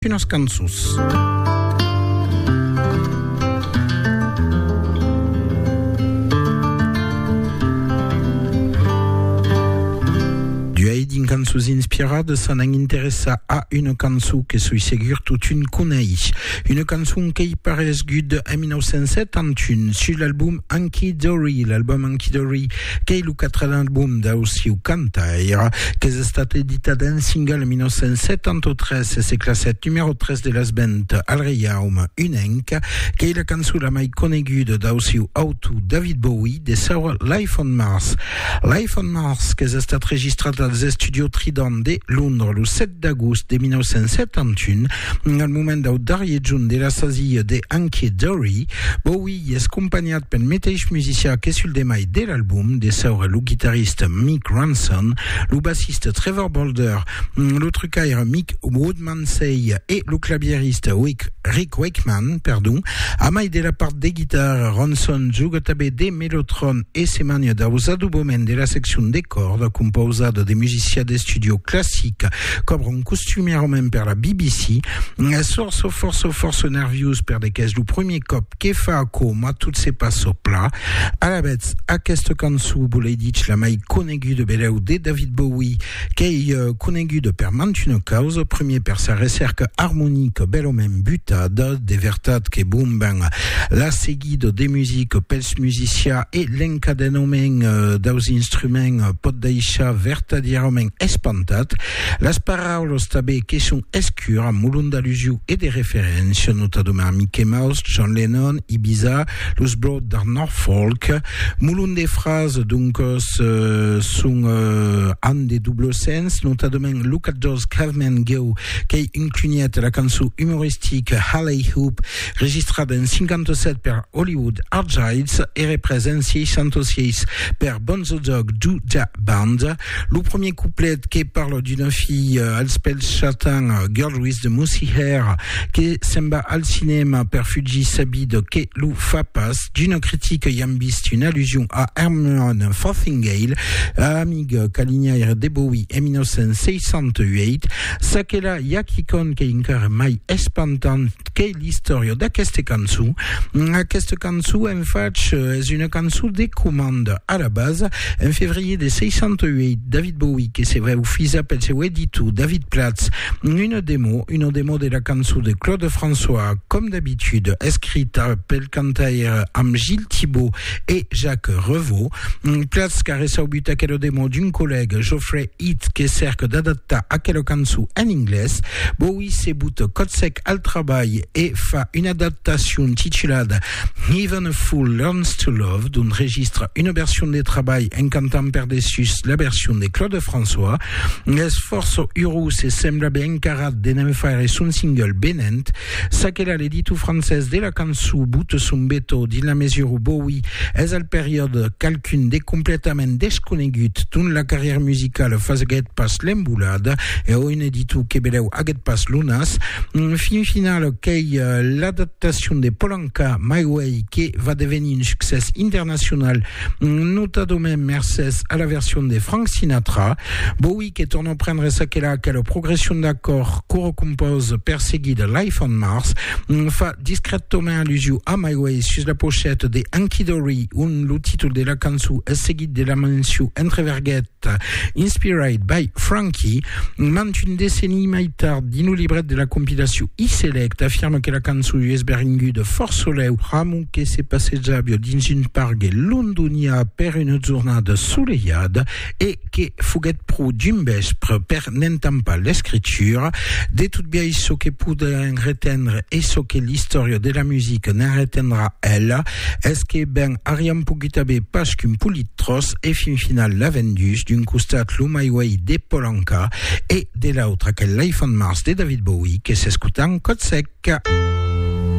Unas cançons. cançons inspirades s'en an interessa a una cançon que soi segur totun coneix. Una cançon qu'ei paresgut en 1971 sur l'album Anki Dory, l'album Anki Dory Qu'ei lo quatren album dau siu cantaire, qu'es estat editat en single en 1973 e se classèt numèro 3 de las ventes al Reiaume Unenc. Qu'ei la cançon la mai coneguda dau siu autor David Bowie de saura Life on Mars. Life on Mars qu'es estat registrat als Estudios Trident de Londres lo 7 d'agost de 1971, Al moment dau darrier jorn de la sasia de Hunky Dory, Bowie i es companhat pel meteis musicià que sul demai de l'album, de saura lo guitarrista Mick Ronson, lo bassista Trevor Bolder, lo trucaire Mick Woodmansey e lo clavierista Rick Wakeman, perdon. A mai de la part de guitarra, Ronson joga tanben de Melotron e se mania dau zadubament de la seccion de còrda compausada de musicià d'estudio classic qu'obron costumièrament per la BBC. Sor sò fòrça fòrça nerviós perdec es lo premier còp que fa aquò mas tot se passa pla. Alavetz, aquesta cançó, bolei dich la mai coneguda beleu de David Bowie, Qu'ei conenguda per mantuna causa, primier per sa recèrca armonica bèlament butada, de vertat que bon ben la seguida de musica pels musicià e l'encadenament daus instruments pòt daishar vertadièrament espantat, las paraulas tabé que son escura, molon d'alusiu e de referéncia, notadament a Mickey Mouse, John Lennon, Ibiza, los Blot d'Art Norfolk, Molon de frases, doncas, son an de doble sens, notadament lo catorz Caveman Go, qu'ei un cunhat de la cançon umoristica Halley Hoop, registrada en 57 per Hollywood Argyles e represa en 66 per Bonzo Dog Doo Dah Band. Lo premier couplet que parle d'una fille euh, als pèls chatins, euh, girl with the mousy hair, que se'n va al cinema per fugir sa vida que lo fa pas. D'una critica i am vist une allusion a Herman Fothingale, amic calinhaire de Bowie en 1968. Ça que la, i a quicòm qu'ei encara mai espantant, qu'ei l'istòria d'aqueste cançon. Aquesta cançon, en fach, es una cançon de comanda. A la basa, en febrier de 68, David Bowie, que se veu fisa pel seu editor David Platz, una demo, una demo de la cançon de Claude François, com d'habitude, escrita pel cantaire amb Gilles Thibaud e Jacques Revaux. Platz qu'a reçaubut aquela demo d'un collègue, Geoffrey It que cèrque d'adaptar aquela cançon en inglés, Bowie se buta còth sec al trabalh e fa una adaptacion titulada Even a Fool Learns to Love, d'ont registra una version de trabalh en cantant per dessús la version de Claude François. Es fòrça urós e sembla ben encarat de ne'n faire son single venent Ça que la l'editor francés de la cançon bote son beto dins la mesura où Bowie es al periòde qualqu'un de completament desconegut dont la carrière musicale faseguèt pas l'embolada e o un editor que belèu aguèt pas lo nas, fin final qu'ei l'adaptacion de Polanka, My Way, que va devenir un succès internacional, notadament mercés a la version de Frank Sinatra. Bowie que torna prendre ça que la que la progression d'accord coro compose perseguit de Life on Mars fa discrètement allusion a My Way sus la pochette de Anki Dory on le titre de la cançon est seguit de la mention entre verguettes Inspired by Frankie mant une décennie mai tard dins le libret de la compilation E-Select affirme que la cançon US Beringu de Fort Soleil Ramon que se passejava dins une pargue londonià per une jornada soleillada et que foguèt pro dimbèspre per n'entampar l'escritura de tot biais çò que podèm retendre e çò que l'istòria de la musica ne'n retendrà ela es que ben ariam pogut aver pas qu'un polit tròç e fin final la vendus d'un costat lo My Way de Paul Anka e de l'autre aquel Life on Mars de David Bowie que s'escotan còth sec.